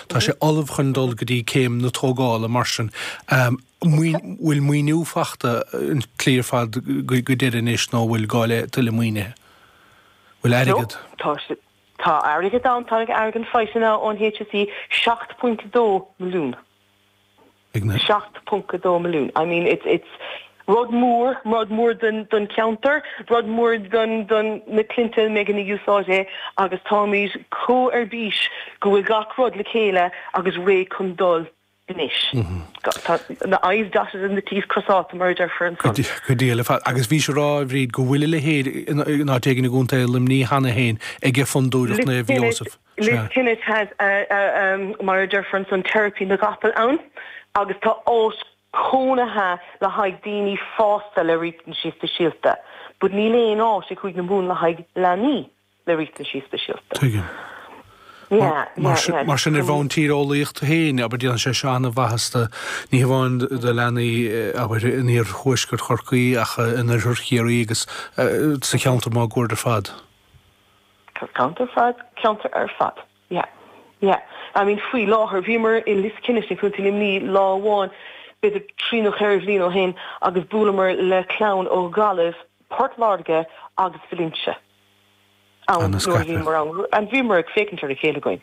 Tá sé ullamh chun dul go dtí céim na tógála mar sin. Bhfuil maoiniú fachta an tslí ar fad go deireadh anois nó bhfuil gá le tuilleadh maoinithe? Bhfuil airgead? Tá airgead ann, tá airgead faighte ón HSE, 7.2 milliún. ag na. 7.2 milliún. I mean, it's, it's rud mór, rud mór don, don cheantar, rud mór don, don na cliaint a mbeidh ag úsáid é agus táimid chomh ar bís go bhfuil gach rud le chéile agus réidh chun dul anois. Tá na I's dotted and na T's crosálta mar a deirfear ansan. Go diail ar fad. Agus bhís a rá, a Bhríd, go bhfuil a leithéid in áit éigin i gContae Luimní cheana féin ag Fondúireacht Naomh Iósaef. Liskennett, tá mar a deirfear ansan teiripe na gcapall ann agus tá áit cónaithe le haghaidh daoine fásta le riachtanais speisialta, but níl aon áit sa Chúige na Mumhan le haghaidh leanaí le riachtanais speisialta. Tuigim. Mar sin ar bhonn tíreolaíochta féin, abair, déanann sé seo an-mhaitheas do ní hamháin do leanaí, abair, in iarthuaisceart Chorcaí ach in oirthear Chiarraí agus sa cheantar máguaird ar fad. Ceantar fad, ceantar ar fad. Yeah. Yeah. I mean faoi láthair, bhíomar i Liskennett i Co. Luimní lá amháin, b'fhéidir trí nó cheithre bhliain ó shin agus bhuaileamar le clann ó Ghaillimh, Port Láirge agus Vailinte ann nuair a bhíomar ann and bhíomar ag féachaint ar a chéile againn.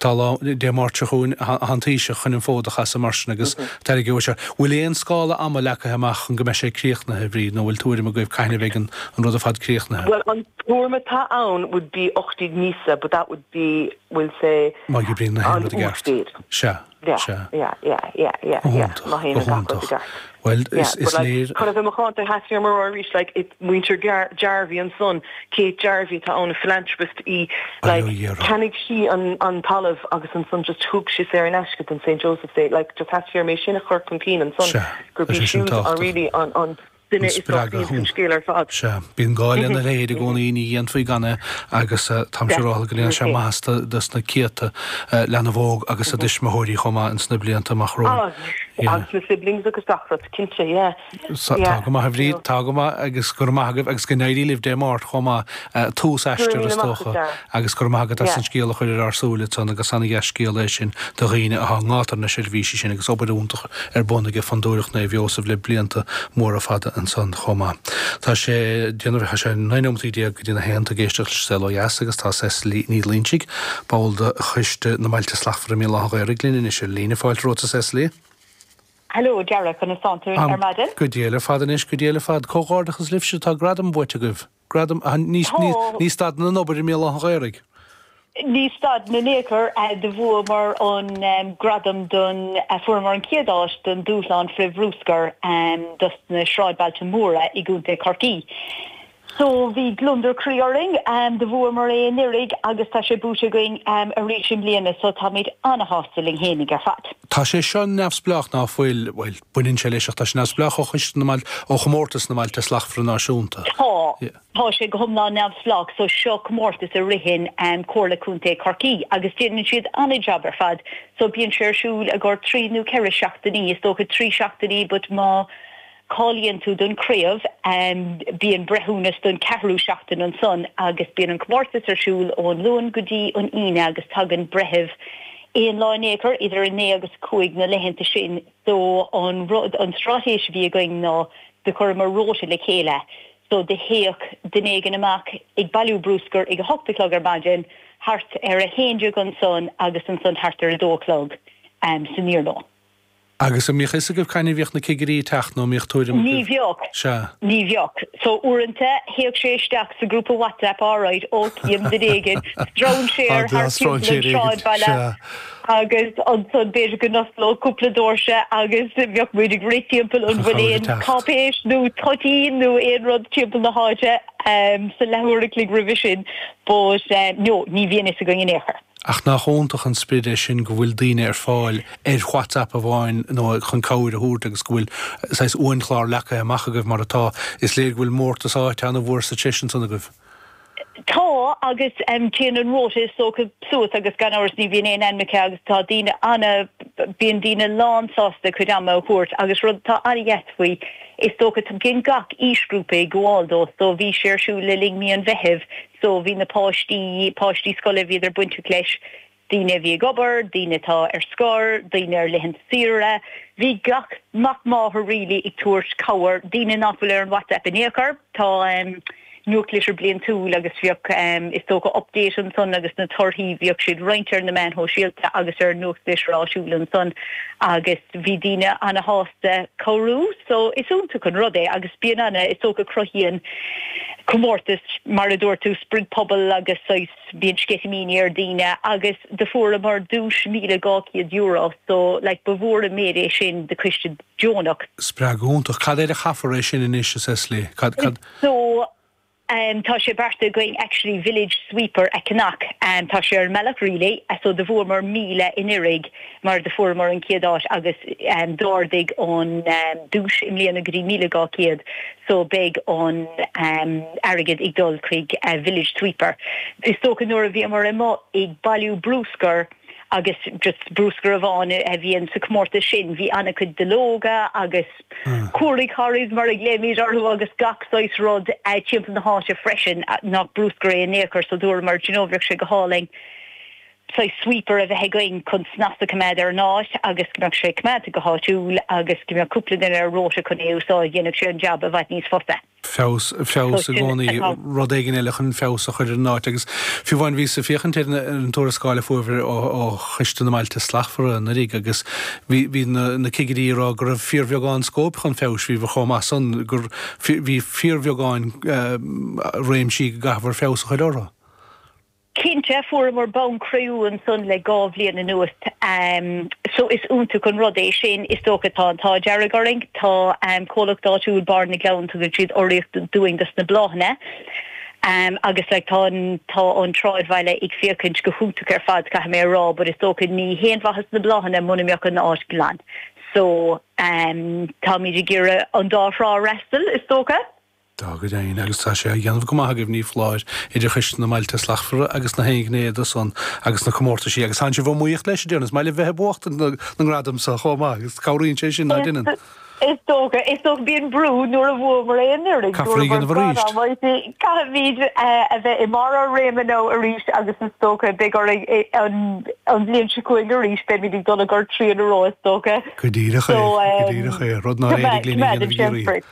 Tá lá Dé Máirt seo chugainn an Taoiseach chun an fód a chasadh mar sin agus tairgeoidh sé. Bhfuil aon scála ama leagtha amach chun go mbeidh sé críochnaithe, a Bhríd, nó bhfuil tuairim agaibh cathain a bheidh an rud ar fad críochnaithe? Bhuel, an tuairim atá ann would be 18 míosa but that would be, we'll say, Má oibríonn gach aon rud i gceart. Sea, sea. Go hiontach, go hiontach. Bhuel, is léir. Chun a bheith macánta, tá sé an-mhór arís, like, it, muintir Jarvey ansan, Kate Jarvey atá ann, a philanthropist í, like, Aó iarr. cheannaigh sí an, an talamh agus ansan just thug sí saor in aisce don St Joseph's, like, just theastaigh uaim é sin a chur chun cinn ansan, Sea, gurb is í é sin siúd, an tábhachtach. really, an, an duine is spreagadh dochtíonta thú. den scéal ar fad. Sea, bíonn gá lena leithéid i gcónaí, ní dhéanfaí gan é, agus, eh, táim siúrálta go ndéanfaidh sé maitheas do, do sna céadta, eh, leanbh óg agus a dtuismitheoirí chomh maith ins na blianta amach romhainn. Agus na siblings agus gach rud, cinnte, yeah. Tá go maith, a Bhríd, tá go maith agus go raibh maith agat agus go n-éirí libh Dé Máirt chomh maith, tús aistir is dócha, agus go raibh maith agat as an scéal a chur ar ár súile ansan agus an-dheas scéal é sin do dhaoine atá i ngátar na seirbhísí sin agus obair iontach ar bun ag Fondúireacht Naomh Iósaf le blianta móra fada ansan chomh maith. Tá sé déanamh, tá sé 19 nóiméad go dtí na haon, tá tú ag éisteacht leis an Saol Ó Dheas agus tá Cecily Ní Loingsigh. Ball de Choiste na mBailte Slachtmhara i mBéal Átha an Ghaorthaidh linn anois ar líne. Fáilte romhat, a Cecily. Hello, a Dara, conas tánn tú ar maidin? Go diail ar fad anois, go diail ar fad. Comhghairdeachas libhse, tá gradam buaite agaibh. Gradam, a, ní, ní, ní stadann an obair i mBéal Átha an Ghaorthaidh. Ní stadann in aon chor, a, do bhuamar an gradam don, a, fuaireamar an chéad áit don dúshlán frith-bhrúscair, a, dos na sráidbhailte móra i gContae Chorcaí. So bhí gliondar croí orainn, do bhuamar é anuiridh agus tá sé buaite againn arís i mbliana so táimid ana-shásta linn fhéinig ar fad. Tá sé seo neamhspleách ná fuil, bhuel, baineann sé leis ach tá sé neamhspleách ó Choiste na mBailte, ó Chomórtas na mBailte Slachtmhara Náisiúnta. Tá, tá sé go hiomlán neamhspleách so seo comórtas a ritheann Comhairle Contae Chorcaí agus déanann siad ana-jab ar fad so bíonn sé ar siúl i gcomhair trí nó ceithre seachtainí, is dócha trí seachtainí but má. Cáilíonn tú don chraobh, bíonn breithiúnas don cheathrú seachtain ansan agus bíonn an comórtas ar siúl ón Luan go dtí an Aoine agus tagann breithimh aon lá in aon chor idir a naoi agus a cúig na laethanta sin. So an rud, an straitéis a bhí againn ná do chuireamar róta le chéile. So do théadh duine éigin amach ag bailiú brúscair ag a hocht a chlog ar maidin, thart ar a haon déag ansan agus ansan thart ar a dó a chlog san iarnóin. Agus an mbíodh fhios agaibh cathain a bhíodh na cigirí ag teacht nó an mbíodh tuairim agaibh? Ní bhíodh. Sea. Ní bhíodh. So uaireanta théadh sé isteach sa grúpa WhatsApp alright, ó, chím duine éigin, stróinséar thart timpeall an sráidbhaile agus ansan b'fhéidir go n-osclódh cúpla dóirse agus bheadh muid ag rith timpeall an bhfuil aon cáipéis nó toitín nó aon rud timpeall na háite sa leathuair a chloig roimhe sin but no, ní bhíonn fhios againn in aon chor. Ach nach iontach an sprid é sin go bhfuil daoine ar fáil ar WhatsApp amháin nó chun cabhair a thabhairt agus go bhfuil saghas uainchlár leagtha amach agaibh mar atá. Is léir go bhfuil mórtas áite an-mhór sa treis ansan agaibh. Tá agus téann an róta is dócha suas agus gan amhras ní bhíonn aon ainm aici agus tá daoine ana, bíonn daoine lán sásta a cuid ama a thabhairt agus rud atá an-deas faoi is dócha, tagann gach aoisghrúpa ag gabháil dó so bhí sé ar siúl le linn mí an Mheithimh, So bhí na páistí, páistí scoile, bhíodar bainteach leis, daoine a bhí ag obair, daoine atá ar scor, daoine ar laethanta saoire. Bhí gach mac máthar really ag tabhairt cabhair, daoine nach bhfuil ar an WhatsApp in aon chor. Tá ehm, nuachtlitir bliantúil agus bhíodh ehm, is dócha update ansan agus na torthaí, bhíodh siad roinnte ar na meáin shóisialta agus ar an nuachtlitir áitiúil ansan agus. Bhí daoine ana shásta cabhrú so is iontach an rud é agus bíonn ana, is dócha cruthaíonn comórtas mar a dúirt tú sprid pobail agus saghas, bíonn sceitimíní ar daoine agus do fuaireamar duais míle dhá chéad euro so like ba mhór an méid é sin do choiste deonach. Spreagadh iontach. Cad air a chaithfear é sin anois, a Cecily? Cad, cad? So, Tá sé beartaithe againn actually village sweeper a cheannach tá sé ar an mbealach really so do bhuamar míle anuraidh mar do fuaireamar an chéad áit agus d'ardaigh an duais i mbliana go dtí míle dhá chéad so beidh an airgead ag dul chuig village sweeper. Is dócha nuair a bhíomar amuigh ag bailiú brúscar agus just brúscar amháin a bhíonn sa comórtas sin bhí an-chuid duilleoga agus. Curaidh Harry's mar a ghlaoimid orthu agus gach saghas rud timpeall na háite freisin nach brúscar é in aon chor so dúramar do you know bheadh sé go hálainn saghas sweeper a bheith againn chun snas a choimeád ar an áit agus go mbeadh sé coimeádta go háitiúil agus go mbeadh cúpla duine ar rota chun é a úsáid dhéanfadh sé an jab i bhfad níos fusa. feabhas, feabhas i gcónaí, rud éigin eile chun feabhas a chur ar an áit. Agus fiú amháin bhíos ag féachaint ar an tuarascáil a fuaireabhair ó Choiste na mBailte Slachtmhara anuraidh agus bhí na cigirí ag rá go raibh fíorbheagán scóip chun feabhais, bhíobhair chomh maith san gur bhí fíorbheagán réimsí go gcaithfear feabhas a chur orthu. Cinnte, fuaireamar bonn cré-umha ansan le dhá bhliain anuas so is iontach an rud é sin. Is dócha tá an t-ádh dearg orainn, tá comhlacht áitiúil, Barr na gCleann, tugann siad urraíocht dúinn dos na bláthanna agus like tá an, tá an tsráidbhaile ag féachaint go hiontach ar fad caithfidh mé a rá but is dócha ní haon mhaitheas na bláthanna muna mbeadh an áit glan so táimid ag iarraidh an dá thrá a fhreastal is dócha. Tá go deimhin, agus tá sé á dhéanamh go maith agaibh, ní foláir, idir Choiste na mBailte Slachtmhara agus na haon ghné de san, agus na comórtaisí, agus tánn sibh iomaíoch leis, a déarfainn. Is maith libh bheith ag buachtaint na ngradam so chomh maith, agus cabhraíonn sé sin, ná deineann? Is dócha, is dócha. Bíonn brú nuair a bhuamar aon uair amháin, Caithfear é a dhéanamh arís. caithfimid a bheith i mbarr ár réime nó arís agus is dócha beidh orainn é an an bhliain seo chugainn arís, beimid ag dul i gcomhair trí huaire in a row is dócha. Go díreach é, go díreach é, rud nár éirigh linn a dhéanamh i gCiarraí.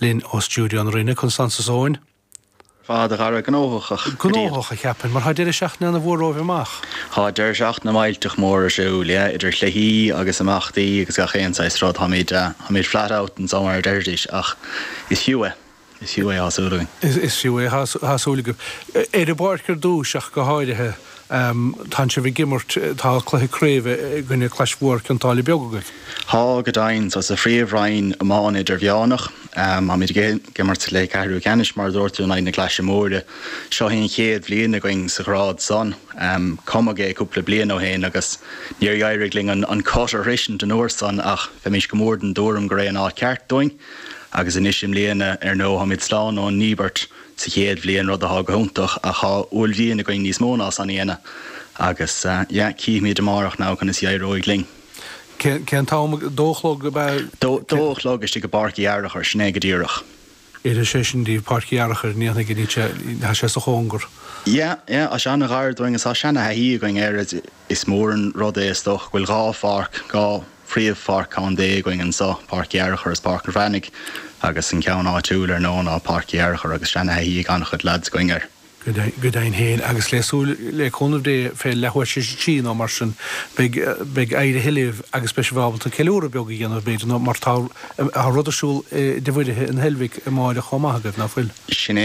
Linn ó stiúideo na Rinne, conas tánn tú, a Eoin. fad, a Dhara gnóthach go dtí. Gnóthach, a cheapfainn, mar tá deireadh seachtaine ana mhór romhaibh amach. Tá deireadh seachtaine millteach mór ar siúl, yeah, idir chluichí agus imeachtaí agus gach aon saghas rud. Táimid, táimid flat out anso mar a deirfidís ach is fiú é, is fiú é, thá súil againn. Is fiú é, thá súil agaibh. Ar an bpáirc ar dtúis ach go háirithe. Tánn sibh ag imirt, tá cluiche craoibhe i gcoinne Clais Mhór Cionn tSáile Beag agaibh. Tá go deimhin, so sa Phríomh Roinn Iomána Idirmheánach, táimid ag imirt sa chluiche Ceathrú Ceannais mar a dúirt tú in aghaidh na Claise Móire. Seo í an chéad bhliain againn sa ghrád san. Cumadh é cúpla bliain ó shin agus níor éirigh linn an cut a shroisint an uair san ach bheimís go mór den dtuairim gur é an áit ceart dúinn agus anois i mbliana ar ndóigh táimid slán ón ndíbirt sa chéad bhliain, rud atá go hiontach ach tá uaillmhian againn níos mó ná san a dhéanamh agus yeah, cífimid amárach now conas a éireoidh linn. Cén, cén t-am? A dó a chlog ab ea? Dó, dó a chlog istigh i bPáirc Uí Fhearchair, sin é go díreach. Oirfidh sé sin díbh, Páirc Uí Fhearchair, ní nach ionadh, tá sé sa chóngar. Yeah, yeah, tá sé an-ghar dúinn agus tá seana-thaithí againn air. Is mór an rud é, is dócha, go bhfuil dhá pháirc, dhá phríomh-pháirc contae againn anso, Páirc Uí Fhearchair is Páirc an Bhreathnaigh, agus an ceann áitiúil, ar ndóigh, ná Páirc Uí Fhearchair, agus seanathaithí ag an-chuid lads againn air. Go deimhin féin, agus le súil, le cúnamh Dé, fé leathuair is a trí, nó mar sin, beidh éirithe libh, agus beidh sibh ábalta ceiliúradh beag a dhéanamh, b'fhéidir, nó mar tá rud ar siúl i dTigh Mhuirithe in Heilbhic amáireach chomh maith agaibh, ná fuil? Sin é.